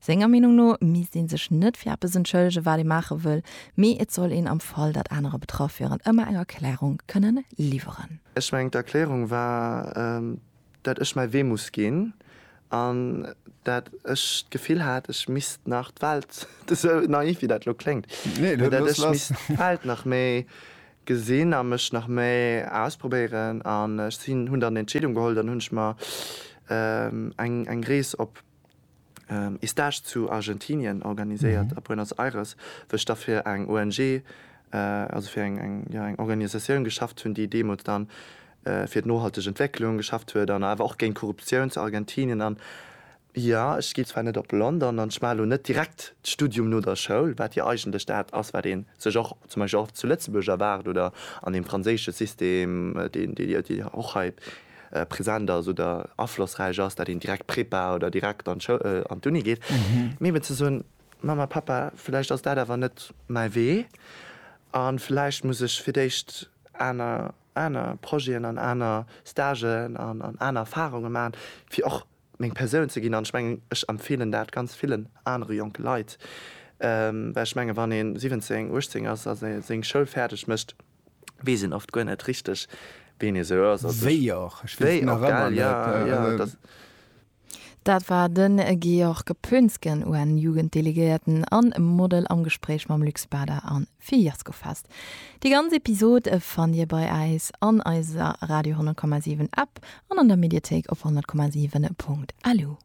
Senger Meenung no misst ee sech net fir eppes entschëllegen, wat ee maache wëll, mee et soll een am Fall, datt anerer betraff wieren, ëmmer eng Erklärung kënne liwweren. Ech mengen, d'Erklärung war, datt ech mäi Wee muss ginn an datt ech d'Gefill hat, ech misst nach d'Welt, esou naiv wéi dat elo kléngt, mee datt ech misst d'Welt nach méi gesinn a mech nach méi ausprobéieren. An ech hunn dann d'Entscheedung geholl, dann hunn ech mer eng Rees op. ee Stage zu Argentinien organiséiert, a Buenos Aires, wou ech da fir eng ONG, also fir eng, jo, eng Organisatioun geschafft hunn, déi deemools dann fir d'nohalteg Entwécklung geschafft huet an awer och géint Korruptioun zu Argentinien. An, jo, ech gi zwar net op London an ech maachen elo net direkt d'Studium no der Schoul, wat jo eigentlech dat ass, wat ee sech och zum Beispill och zu Lëtzebuerg erwaart oder an deem franséische System, deen, déi jo och hei present ass oder aflossräich ass, dat een direkt Prépa oder direkt an d'Uni geet, mee eben ze soen, Mamma, Pappa, vläicht ass dat awer net mäi Wee a vläicht muss ech fir d'éischt aner, aner Projeten an aner Stagen an aner Erfarunge maachen, fir och meng Persoun ze ginn. An ech mengen, ech empfeelen dat ganz villen anere jonke Leit, well ech menge wann ee 17, 18 ass a seng Schoul fäerdeg mécht, wees een oft guer net richteg ween ee sou ass. Wéi och, ech wees nach ëmmer net. Dat war de Georg Poensgen, UN-Jugenddelegéierten an Model am Gespréich mam Luc Spada a Fiasco Fest. Déi ganz Episod fannt Dir bei äis an eiser Radio 10,7 App an an der Mediathéik op 10,7 Punkt lu.